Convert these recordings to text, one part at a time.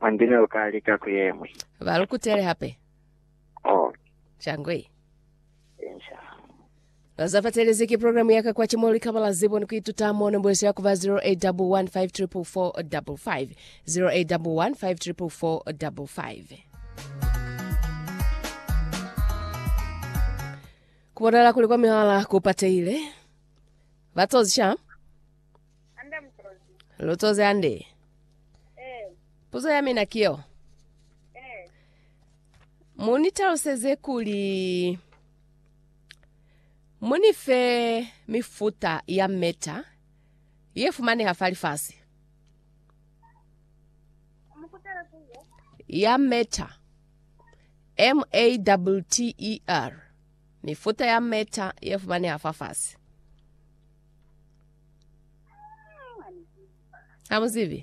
Hambi ne lu ka lika ku ye ñwi. Ba lu kutele hape. Oh. Shangwe. Insha. Na za fatelezi ki programu ya ka kwa chimo li kaba la zibo ni ku ituta mo nombo yesu ya kuba 0811544555 0811544555. Kubonala kuli kwa mihala ku patehile. Ba tozisha. Hande mutozi. Lutozi hande. Eh. Puzo ya mina kiyo. Eh. Muni taluseze kuli muni fe mifuta ya meta ye fumaneha fa lifasi. Mukutela kuyo. Ya meta. M A W T E R. Mifuta ya meta ye fumaneha fa fasi. Ha mu zibi?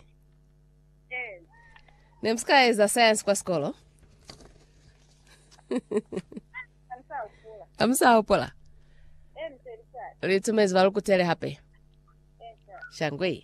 Eh. Ne mu si ka eza science kwa sikolo? Ha ni sa hopola. Ha mu sa hopola? Eh, ni se ni sa. Li tumezi ba lu kutele hape. Eh, sa. Shangwe.